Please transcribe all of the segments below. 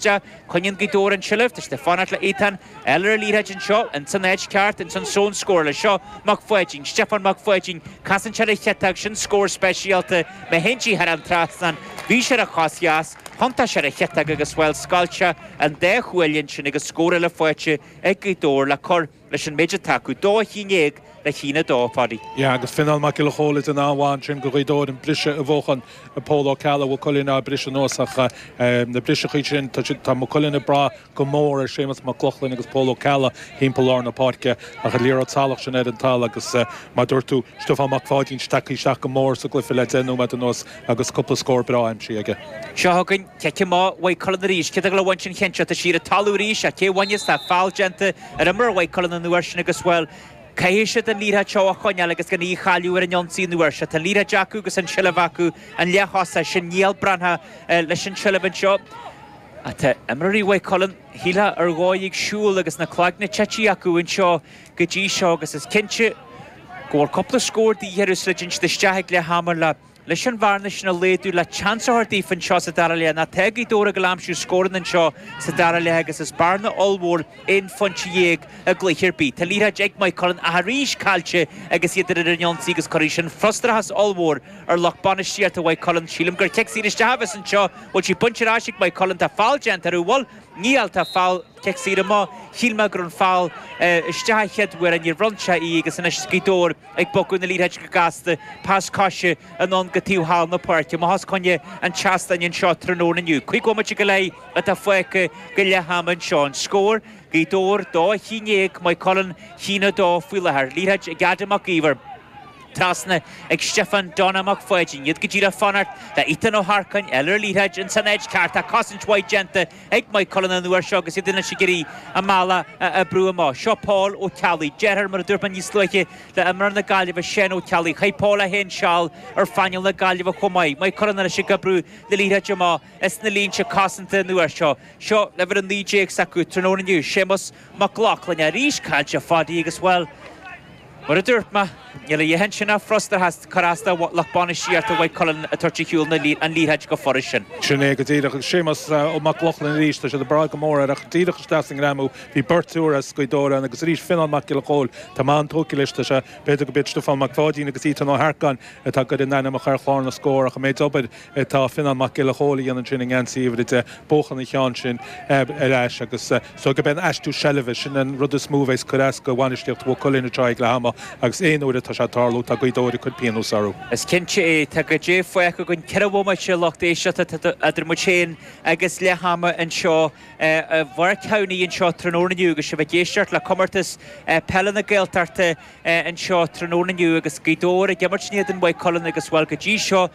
Sea, coinníonn Gaoth Dobhair an tseilbh, tá siad ag fanacht le Ethan fháil ar an liathróid anseo, ins an áit cheart, ins an zón scórála seo, Mac Pháidín, Stiofán Mac Pháidín, casann sé ar a chiotóg, sin scór speisialta, má théann sí thar an trasnán, bhí sé ar a chos dheas, thiontaigh sé ar a chiotóg agus, bhuel, scoilt sé an dá chuaille ansin agus scór eile faighte ag Gaoth Dobhair le cur. leis an méid atá acu, dó a haon déag le haon a dó, a Pháidí. Sea, agus Fionnán Mac Giolla Chomhaill den am ansin go Gaoth Dobhair, an briseadh a bhuachan Pól Ó Ceallaigh, Mhaigh Cuilinn á briseadh anuas ach na briseachaí sin, tá Maigh Cuilinn ag brath go mór ar Séamus Mac Lochlainn agus Pól Ó Ceallaigh thimpeall lár na páirce ach an liathróid salach sin ar an talamh agus mar a dúirt tú, Stiofán Mac Pháidín tagtha isteach go mór sa gcluiche le deich nóiméad anuas agus cúpla scór breá aimsithe aige. Seo chugainn cic amach Mhaigh Cuilinn arís. Cé atá le bhaint an ceann seo, tá sí ar an talamh arís ach cé a bhainfeas? Tá foul déanta Ar imreoir Mhaigh Cuilinn an uair sin agus, bhuel, caithfidh siad an liathróid seo a choinneáil agus gan í a chailleadh ar an ionsaí an uair seo. Tá an liathróid acu agus an tseilbh acu, an leaththosaí sin, Niall Breathnach, leis an tseilbh anseo. Ach tá imreoirí Mhaigh Cuilinn, shílfeá, ar dhóigh ag siúl agus na cloigne tite acu anseo go dtí seo agus is cinnte go bhfuil cúpla scór de dhíth orthu sula dtéann siad isteach ag leath ama le Leis an bhearna sin a laghdú le seans a thabhairt daofa anseo sa dara leath, nó tá Gaoth Dobhair ag gabháil a aimsiú scóranna anseo sa dara leath agus is bearna ollmhór aon phointe dhéag i gcluiche ar bith. Tá an liathróid ag Maigh Cuilinn ach arís caillte agus iad ar an ionsaí agus cuirfidh sin frustrachas ollmhór ar lucht bainistíochta Mhaigh Cuilinn. Sílim gur cic saor isteach a bheas anseo. Bhfuil sí bainte ar ais ag Maigh Cuilinn. Tá foul déanta orthu. Bhuel, níl, tá foul, cic saor amach. Shíl mé go raibh an foul isteach an chéad uair ach níor bhronn sé í agus anois Gaoth Dobhair ag bogadh na liathróide go gasta pas coise anonn go taobh thall na páirce. Amach os coinne an tseastáin anseo tráthnóna inniu. Cúig bhomaite go leith atá fágtha go leath ama anseo. An scór, Gaoth Dobhair 2, a haon déag, Maigh Cuilinn, a haon a 2 faoi láthair. Liathróid ag Adam Mac Iomhair. Trasna ag Stiofán Donna Mac Pháidín. Iad go díreach ag fanacht le Ethan Ó hEarcáin, fháil ar an liathróid ins an áit cheart ach cosaint mhaith déanta. Ag Maigh Cuilinn an uair seo agus iad anois ag iarraidh a mbealach a oibriú amach. Seo Pól Ó Ceallaigh. Deartháir, mar a dúirt mé níos luaithe, le imreoir na Gaillimhe, Seán Ó Ceallaigh. Chaith Pól é féin seal ar phainéal na Gaillimhe chomh maith. Maigh Cuilinn anois ag oibriú na liathróide amach as na línte cosanta an uair seo. Seo an uimhir a naoi déag s'acu tráthnóna inniu. Séamus Mac Lochlainn arís caillte a Pháidí agus, bhuel, mar a dúirt mé, níl a dhath ansin ach frustrachas, cur as do lucht bainistíochta Mhaigh Cuilinn ag tabhairt ar shiúl na liathróide chomh furast sin. Sin é go díreach. Agus Séamus Mac Lochlainn arís, tá siad ag brath go mór air ach díreach isteach sa ngreamú, bhí beirt, triúr as Gaoth Dobhair ann agus arís Fionnán Mac Giolla Chomhaill, tá mé an-tógtha leis, tá sé, b'fhéidir gurb iad Stiofán Mac Pháidín agus Ethan Ó hEarcáin atá ag goid a n-ainmneacha ar chlár na scór ach an méid obair é. Tá Fionnán Mac Giolla Chomhaill a dhéanann sin i ngeansaí uimhir a deich, buachan an cheann sin ar ais agus so go b'in aistriú seilbhe. Sin an rud is mó a bheas cur as do bhainistíocht Mhaigh Cuilinn anseo ag leath ama agus aon uair atá sé ag tarlú tá Gaoth Dobhair ag cur pionós orthu. Is cinnte é. Tá go díreach fágtha againn ceithre bhomaite a lucht éisteachta idir muid féin agus leath ama anseo i bPáirc Thamhnaigh anseo tráthnóna inniu agus sibh ag éisteacht le Comórtas Peile na Gaeltachta anseo tráthnóna inniu agus Gaoth Dobhair ag imirt in éadan Mhaigh Cuilinn agus bhuel go dtí seo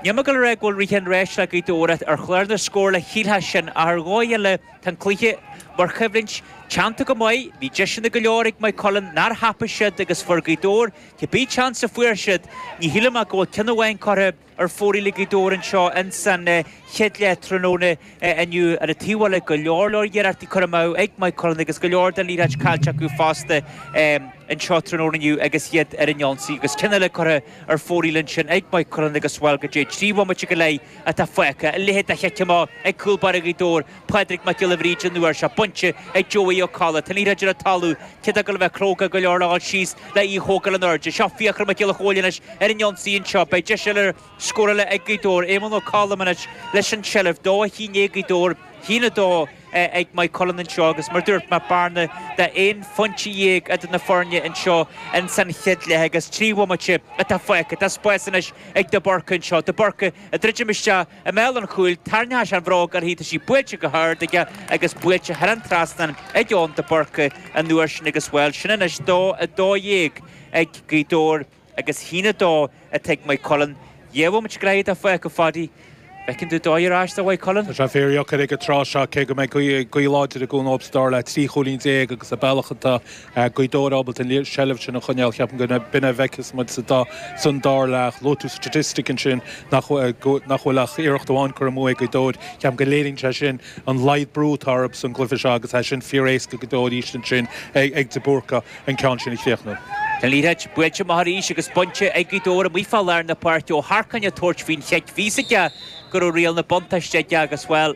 Níl mé ag gabháil a rá go bhfuil rith an ráis le Gaoth Dobhair ar chlár na scórála shílfeá sin ach ar dhóigh eile tá an cluiche, mar choimhlint, teannta go maith. Bhí deiseanna go leor ag Maigh Cuilinn nár thapaigh siad agus fuair Gaoth Dobhair cibé tseans a fuair siad. Ní shílim ach go bhfuil ceann amháin curtha ar fóraoil ag Gaoth Dobhair anseo ins an chéad leath tráthnóna inniu. Ar an taobh eile go leor leor iarrachtaí curtha amú ag Maigh Cuilinn agus go leor den liathróid caillte acu fosta anseo tráthnóna inniu agus iad ar an ionsaí agus ceann eile curtha ar fóraoil ansin ag Maigh Cuilinn agus bhuel go díreach trí bhomaite go leith atá fágtha, a leithéid de chic amach ag cúl báire Ghaoth Dobhair, Pádraig Mac Giolla Bhríde an uair seo, bainte ag Joey Ó Colla. Tá an liathróid ar an talamh, cé atá ag gabháil a bheith cróga go leor le dhul síos le í a thógáil in airde. Seo Fiachra Mac Giolla Chomhaill anois ar an ionsaí anseo. Beidh deis eile ar scór eile ag Gaoth Dobhair. Éamonn Ó Colm anois leis an tseilbh, dó a haon déag Gaoth Dobhair, a haon a dó, ag Maigh Cuilinn anseo agus mar dúirt mé bearna de 11 phointe idir na foirne anseo in san chéad leath agus trí bhomaite atá fágtha. Tá spás anois ag de Búrca anseo. De Búrca ag druidim isteach i mbéal an chúil, tarraingeoidh sé an bhróg uirthi, tá sí buailte go hard aige agus buailte thar an trasnán ag Eoin de Búrca an uair sin agus bhuel sin anois 2, 12 ag Gaoth Dobhair. agus a haon a dó atá ag Maigh Cuilinn. Gheobhaimid greille dá faoch, a Phadaí. Bhfeiceann tú dóigh ar ais do Mhaigh Cuilinn? Tá sé fíordheacair ag an tráth seo, cé go mbeidh gaoth láidir i gcúnamh dóibh sa dara leath, 13 chúilín agus an bealach atá Gaoth Dobhair ábalta an seilbh sin a choinneáil. Ceapaim go b'in a bhfeicfeas muid sa da san dara leath. Luaigh tú statistic ansin nach bhfuil ach iarracht amháin curtha amú ag Gaoth Dobhair. Ceapaim go léiríonn sé sin an laghad brú atá orthu san gcluiche seo agus tá sé sin fíoréasca go deo arís ansin ag de Búrca. an ceann sin a chríochnú. An liathróid buailte amach arís agus bainte ag Gaoth Dobhair amuigh fá lár na páirce Ó hEarcáin ag tabhairt faoin chic. Bhí a fhios aige go raibh riail na buntáiste aige agus, bhuel,